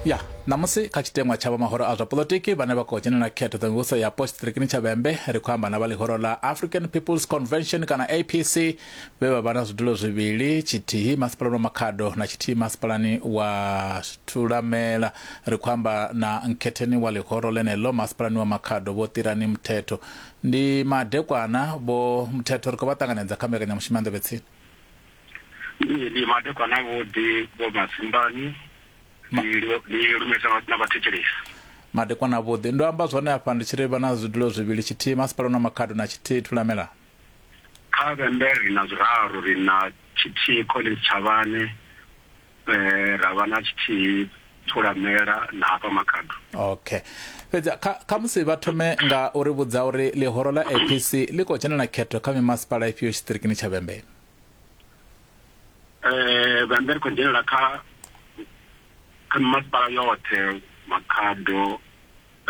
ya ṋamusi kha tshiteṅwa tsha vha mahoro a zwa polotiki vhane vha khou dzhenela khetho dza mivhuso ya post ṱirikini tsha vhembe ri khou amba na vha ḽihoro ḽa african peoples convention kana apc vhe vha vha na zwidulo zwivhili tshithihi masipalani wa makhado na tshithihi masipalani wa thulamela ri khou amba na nkhetheni wa ḽihoro ḽeneḽo masipalani wa makhado vho ṱirani muthetho ndi madekwana vho muthetho ri khou vha ṱanganedza kha mbekanyamushumo ya nḓevhetsini Ndi ndi madekwana vho ḓi vho masimbani ndi lu- ndi lumesa vha- na vhathetshelesi madekwana vhuḓi ndo amba zwone afha ndi tshi ri vha na zwidulo zwivhili tshithihi masipala na makhado na tshithihi thulamela kha vhembe ri na zwiraru ri na tshithihi collins tshavhane eh, ra vha na tshithihi thulamela na hafha makhado okay fhedzi kha kha musi vha thome nga uri vhudza uri ḽihoro ḽa apc ḽi khou dzhenela khetho kha mimasipala ifhio tshiṱirikini tsha vhembe eh bambe ri khou dzhenelela kha kha masipala yoṱhe makhado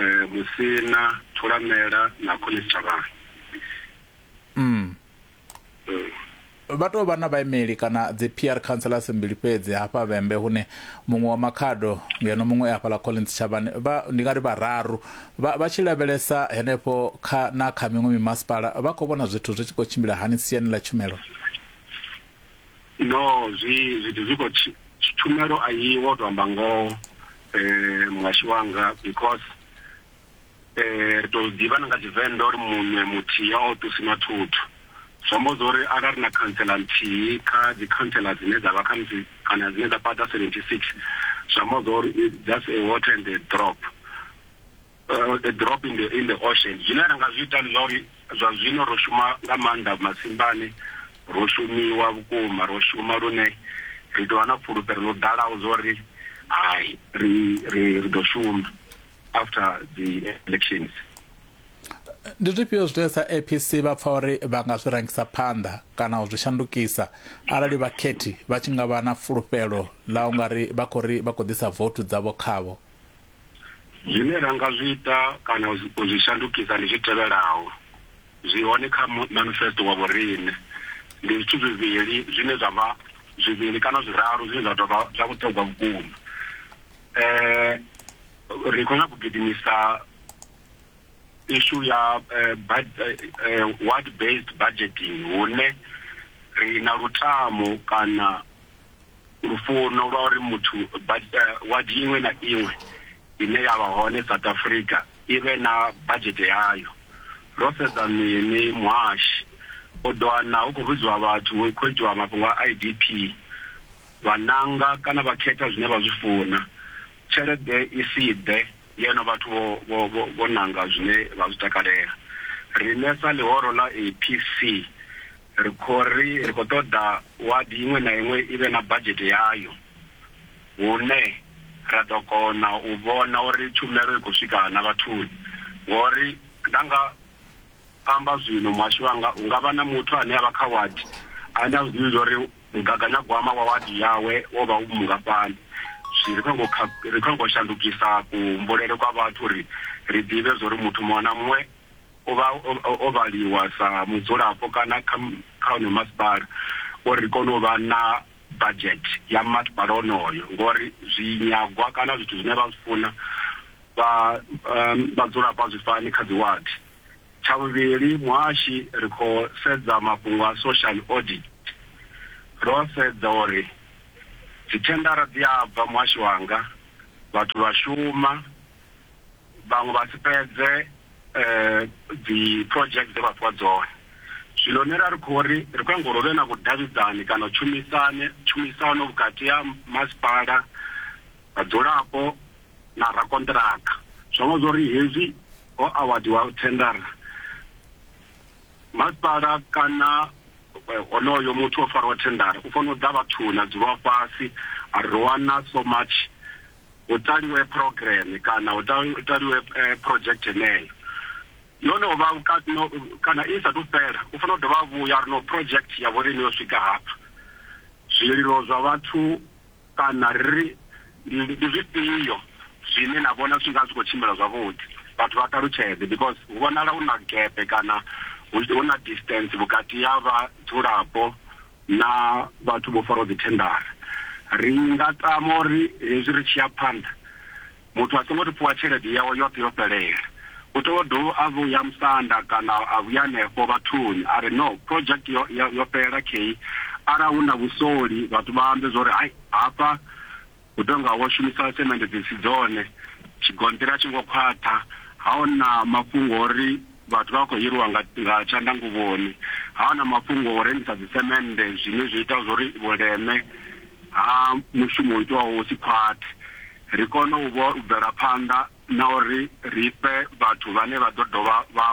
eh musina thulamela na khone thavhani mm vha tou vha na vhaimeli kana dzi PR councillors mbili fhedzi hafha vhembe hune muṅwe wa makhado ngeno muṅwe afhala Collins Chavhani vha ndi nga ri vhararu Vha, vha tshi lavhelesa henefho kha na kha miṅwe mimasipala vha khou vhona zwithu zwi tshi khou tshimbila hani siani ḽa tshumelo no zwi zwithu zwi khou tshumelo a yi wo to amba ngoho um muhashi wanga because um ri tou ḓivha na nga tshivenḓa uri muṋe muthihi a o ṱusi na thuthu Zwi amba zwa uri arali ri na khantsela nthihi kha dzi khantsela dzine dza vha khamusi kana dzine dza fhaṱa 76, zwi amba zwa uri it's just a water and a drop, a drop in the, in the ocean. Zwine ra nga zwi ita ndi zwa uri zwa zwino ro shuma nga maanḓa masimbani, ro shumiwa vhukuma, ro shuma lune ri tou vha na fhulufhelo ḽo ḓalaho zwa uri hai ri ri ri ḓo shuma. after the elections ndi zwifhio zwine sa apc vha pfa uri vha nga zwi rangisa phanḓa kana u zwi shandukisa arali vhakhethi vha tshi nga vha na fulufhelo ḽa u nga ri vha khou ri vha khou ḓisa vouthu dzavho khavho zwine ra nga zwi ita kana u zwi- u zwi shandukisa ndi zwi tevhelaho zwi hone kha mu- manifesto wa vhorine ndi zwithu zwivhili zwine zwa vha zwivhili kana zwiraru zwine zwa tou vha zwa vhuṱhogwa vhukuma eh ri khou nyaka u gidimisa issue ya eh, eh, eh, word based budgeting hune ri na lutamo kana lufuno lwa uri muthu ward iṅwe na iṅwe ine ya vha hone south africa i vhe na budget yayo ro sedza mini muhashi u ḓo wana hu khou vhidziwa vhathu hu khou itiwa mafhungo a i d p Vha nanga kana vha khetha zwine vha zwi funa, tshelede i si ḓe ngeno vhathu vho vho nanga zwine vha zwi takalela. Riṋe sa ḽihoro ḽa APC ri khou ri ri khou ṱoḓa wadi iṅwe na iṅwe i vhe na badzhete yayo hune ra ḓo kona u vhona uri tshumelo i khou swika na vhathuni ngori nda nga amba zwino muhasho wanga hu nga vha na muthu ane a vha kha wadi ane a zwi ḓivhi zwa uri Mugaganyagwama wa wadi yawe wo vha u mungafhani? Zwi ri khou nyanga u kha, ri khou nyanga u shandukisa kuhumbulele kwa vhathu uri ri ḓivhe zwa uri muthu muṅwe na muṅwe o vha, o, o vhaliwa sa mudzulapo kana kha, kha wonoyo masipala uri ri kone u vha na budget ya masipala wonoyo ngori zwinyagwa kana zwithu zwine vha zwi funa vha, um, vhadzulapo a zwi fani kha dzi wadi. Tsha vhuvhili, muhashi ri khou sedza mafhungo a social audit, ro sedza uri dzithendara dzi a bva muhashi wanga, vhathu vha shuma, vhaṅwe vha si fhedze dzi project dze vha fhiwa dzone. Zwino nṋe ra ri khou ri, ri khou nyaga uri hu vhe na vhudavhidzani kana tshumisane, tshumisano vhukati ha masipala, vhadzulapo. na rakonṱiraka zwo vha zwo ri hezwi ho awadziwa thendara masipala kana eh, honoyo muthu o fariwa thendara u fanela u ḓa vhathuni a dzulwa fhasi a ri wana so much hu taliwe program kana hu taliwe eh, project yeneyo yo no vha kana i sa tu fhela u fanela u dovha vhuya ri no project ya vhorine yo swika hafha zwililo zwa vhathu Kana ri ri, Ndi zwifhio zwine na vhona zwi tshi nga zwi khou tshimbila zwavhuḓi? Vhathu vha ṱalutshedze, because hu vhonala hu na gepe kana hu hu na distance vhukati ha vhadzulapo na vhathu vho faraho dzithendara. Ri nga tama uri hezwi ri tshi ya phanḓa, Muthu a songo tou fhiwa tshelede yawe yoṱhe yo fhelela, u tea u dovha a vhuya musanda kana a vhuya hanefho vhathuni a ri, No, project yo, yo, yo fhelela khei. Arali hu na vhusoli, vhathu vha ambe zwa uri, Hai, hafha hu tou nga ho shumiswa semende dzi si dzone, tshigonṱiri a tshi ngo khwaṱha, ha ho na mafhungo a uri vhathu vha khou hiriwa nga, nga tshanḓanguvhoni, ha ho na mafhungo a u rengisa dzisemende zwine zwi ita zwa uri vhuleme ha mushumo u itwaho vhu si khwaṱhe. ri kone u vho u bvela phanḓa na uri ri fhe vhathu vhane vha ḓo dovha vha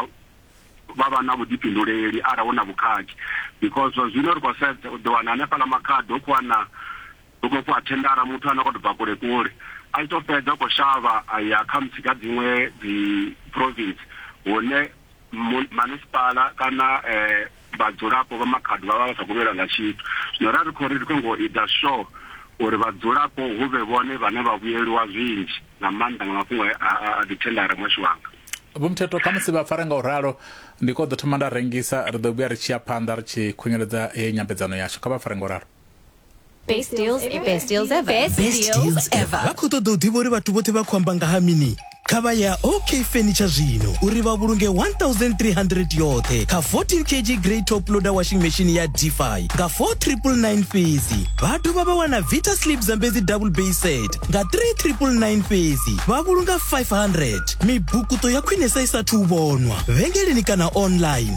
vha vha na vhuḓifhinduleli arali hu na vhukhakhi because zwa zwino ri khou sedza u ḓo wana hanefhaḽa makhado hu khou wana hu khou fhiwa thendara muthu ane a khou tou bva kule kule a tshi tou fhedza u khou shavha a ya kha musi kha dziṅwe dzi province hune munisipala kana um vhadzulapo vha Makhado vha vha vha sa khou vhuyelwa nga tshithu. Zwino ra ri khou ri ri khou nyanga u ita sure uri vhadzulapo hu vhe vhone vhane vha vhuyeliwa zwinzhi nga maanḓa nga mafhungo a a dzithendara muhasho wanga. Vho Mthethwa, Khamusi vha fare nga u ralo, ndi khou ḓo thoma nda rengisa, ri ḓo vhuya ri tshi ya phanḓa ri tshi khunyeledza heyi nyambedzano yashu. Kha vha fare nga u ralo. Best deals ever. Best deals ever. Best deals ever. vha khou ṱoḓa u ḓivha uri vhathu vhothe vha khou amba nga ha mini kha vha ya ok furniture zwino uri vha vhulunge 1300 yoṱhe kha 14 kg grey top loader washing machine ya dfi nga 4999 fhedzi vha dovha vha wana vita slip zambedzi double bay set nga 3999 fhedzi vha vhulunga 500 mibukuto ya khwinesa i sathu u vhonwa vhengeleni kana online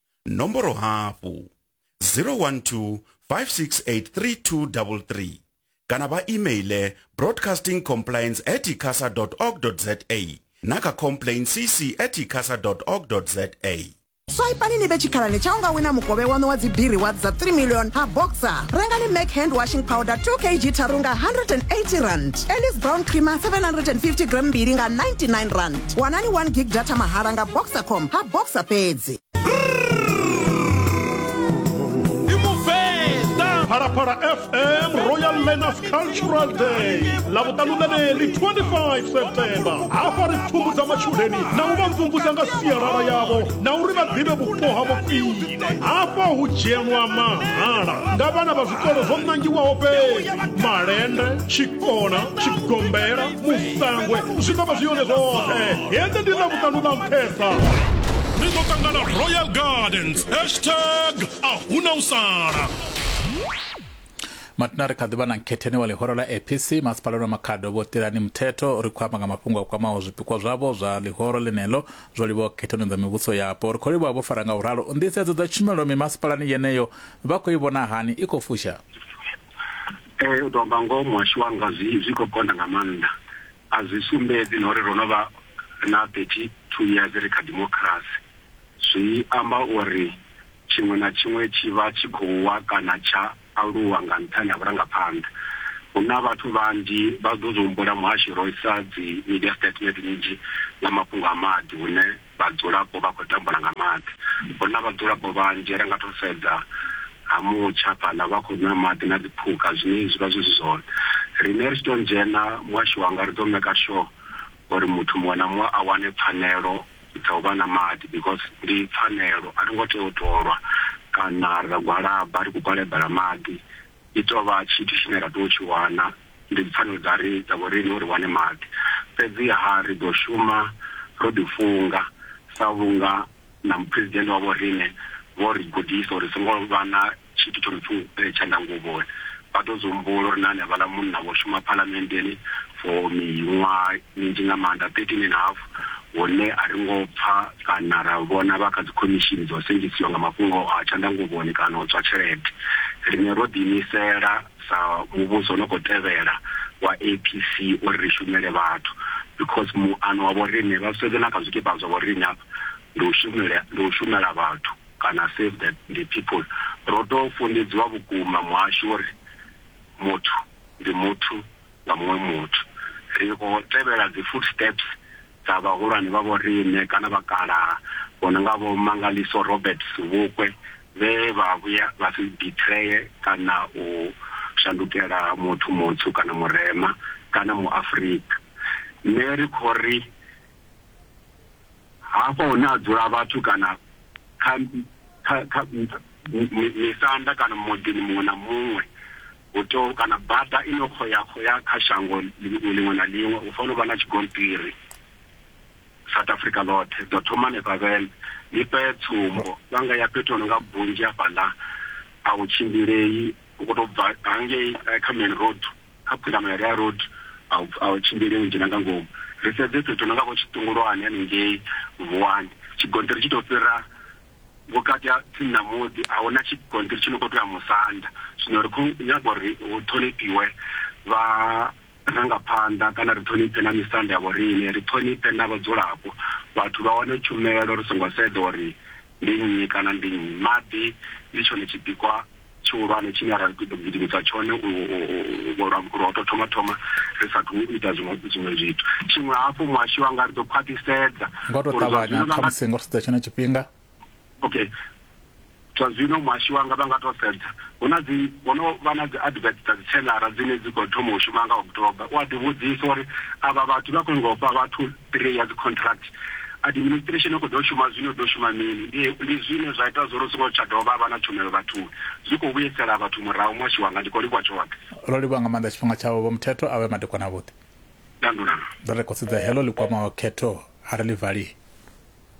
nomboro hafhu 012 5683233 kana vha emaile broadcasting compliance at icasa org za na kha complain cc at icasa org za swaipani ni vhe tshikhalani tsha u nga wina mukovhe waṋu wa dzibiri wa dza 3 million ha boxer rengani mac hand washing powder 2 kg tharu nga 180 rand elis brown creamer 750 gram mbili nga 99 rand wanani 1 gig data mahala nga boxer com ha boxer fhedzi Phalaphala FM Royal Learners Cultural Day lavutanu leri 25 September hafha ri pfhumbudza matshudeni na u vha mvumvusa nga sialala yavho na uri vha ḓivhe vhupo havho khwine hafha hu dzhenwa mahala nga vhana vha zwikolo zwo nangiwaho fhedzi malende tshikona tshigombela musangwe zwi ḓo vha zwi yone zwoṱhe hende ndi na vhuṱanu na nṱhesa ri ḓo ṱangana royal gardens hashtag a huna u sala matina ri kha ḓivha na nkhetheni wa ḽihoro la apc masipalani wa makhado vho tirani muthetho ri khou amba nga mafhungo a kwamaho zwipikwa zwavho zwa ḽihoro ḽeneḽo zwo livhaho khethoni dza mivhuso yapo ri khou livha vho fara nga u ralo nḓisedzo dza tshumelo mimasipalani yeneyo vha khou i vhona hani i khou fusha Ee, u tou amba ngoho muhasho wanga zwi zwi khou konḓa nga maanḓa. A zwi sumbedzi na uri ro no vha na 32 years ri kha democracy. Zwi amba uri tshiṅwe na tshiṅwe tshi vha tshi khou wa kana tsha aluwa nga nṱhani ha vhurangaphanḓa. Hu na vhathu vhanzhi vha ḓo zwi humbula muhashi ro isa dzi media statement nnzhi nga mafhungo a maḓi hune Vhadzulapo vha khou tambula nga maḓi. Hu na vhadzulapo vhanzhi ri nga tou sedza ha mutsha fhaḽa vha khou nwa maḓi na dziphukha zwine zwi vha zwi si zwone. Riṋe ri tshi tou dzhena muhasho wanga ri ḓo maker sure uri muthu muṅwe na muṅwe a wane pfhanelo dza u vha na maḓi because ndi pfhanelo a ri ngo tea u tou lwa kana ra gwalaba ri khou gwalabela maḓi. I tou vha tshithu tshine ra tea u tshi wana. Ndi dzipfanelo dza ri dza vhoriṋe uri wane maḓi. Fhedziha ri ḓo shuma ro ḓifunga sa vhunga na Muphuresidennde wa vhoriṋe vho ri gudisa uri ri songo vha na tshithu tsho no pfi u pele tshanḓa nguvhoni. Vha ḓo zwi humbula uri na hanevhaḽa munna vho shuma Phalamenndeni for miṅwaha minzhi nga maanḓa, 13 and half, hune a ri ngo pfa kana ra vhona vha kha dzikhomishini dza u sengisiwa nga mafhungo a tshanḓa nguvhoni kana u tswa tshelede. Riṋe ro ḓiimisela. sa muvhuso no khou tevhela wa APC uri ri shumele vhathu because muano wa vhoriṋe vha sedze na kha zwikipa zwa vhoriṋe hafha ndi u shumela ndi u shumela vhathu kana save the the people ro to funḓedziwa vhukuma muhasho uri muthu ndi muthu nga muṅwe muthu ri khou tevhela dzi footsteps dza vhahulwane vha vhoriṋe kana vhakalaha vho no nga vho Mangaliso Roberts Vhukwe vhe vha vhuya vha si bitreye kana u shandukela muthu mutswu kana murema kana Muafrika. Nṋe ri khou ri, hafha hune ha dzula vhathu kana kha kha kha misanda kana muḓini muṅwe na muṅwe hu tea kana bada ine u khou ya khou ya kha shango ḽiṅwe na ḽiṅwe hu fanela u vha na tshigonṱiri. South Africa ḽoṱhe dzo thoma hanefha Vhembe. Ndi fhe tsumbo, vha nga ya fhethu ho no nga Bunzhi hafhaḽa, a hu tshimbilei, u khou tou bva hangei eh, kha main road, kha phundamo ya Rea Road, a hu a hu tshimbilei u dzhena nga ngomu. Ri sedze fhethu ho no nga vho Tshiṱungulwane hanengei Vuwani, tshigonṱiri tshi tou fhira vhukati ha tsini na muḓi, a hu na tshigonṱiri tshi no khou tou ya musanda. Zwino ri khou nyaga uri hu ṱhonifhiwe vha rangaphanḓa kana ri ṱhonifhe na misanda ya vhoriṋe, ri ṱhonifhe na vhadzulapo, vhathu vha wane tshumelo ri songo sedza uri ndi nnyi kana ndi nnyi. Maḓi ndi tshone tshipikwa tshihulwane tshine ra ḓo gidimisa tshone lwa u tou thoma thoma ri sa athu u ita zwiṅwe zwithu. Tshiṅwe hafhu, muhashi wanga ri ḓo khwaṱhisedza. Nga u tou ṱavhanya, khamusi nga u sedza tshenetsho tshifhinga, okay zwa zwino muhashi wanga vha nga to sedza hu na dzi ho no vha na dzi advert dza dzi tshelara dzine dzi khou thoma u shuma nga october u a ḓivhudzisa uri avha vhathu vha khou ngofha vhathu three ya dzi contract administration khou ḓo shuma zwino ḓo shuma mini ndi zwine zwa ita zwo ri songo tsha dovha vha na tshumelo vhathuni zwi khou vhuyisela vhathu murahu muhashi wanga ndi khou livhuwa tshoṱhe ro livhuwa nga maanḓa tshifhinga tshawe vho muthetho a vhe madekwana avhuḓi dandulana ḓo ri khou sedza heḽo ḽi kwamaho khetho a ri ḽi valii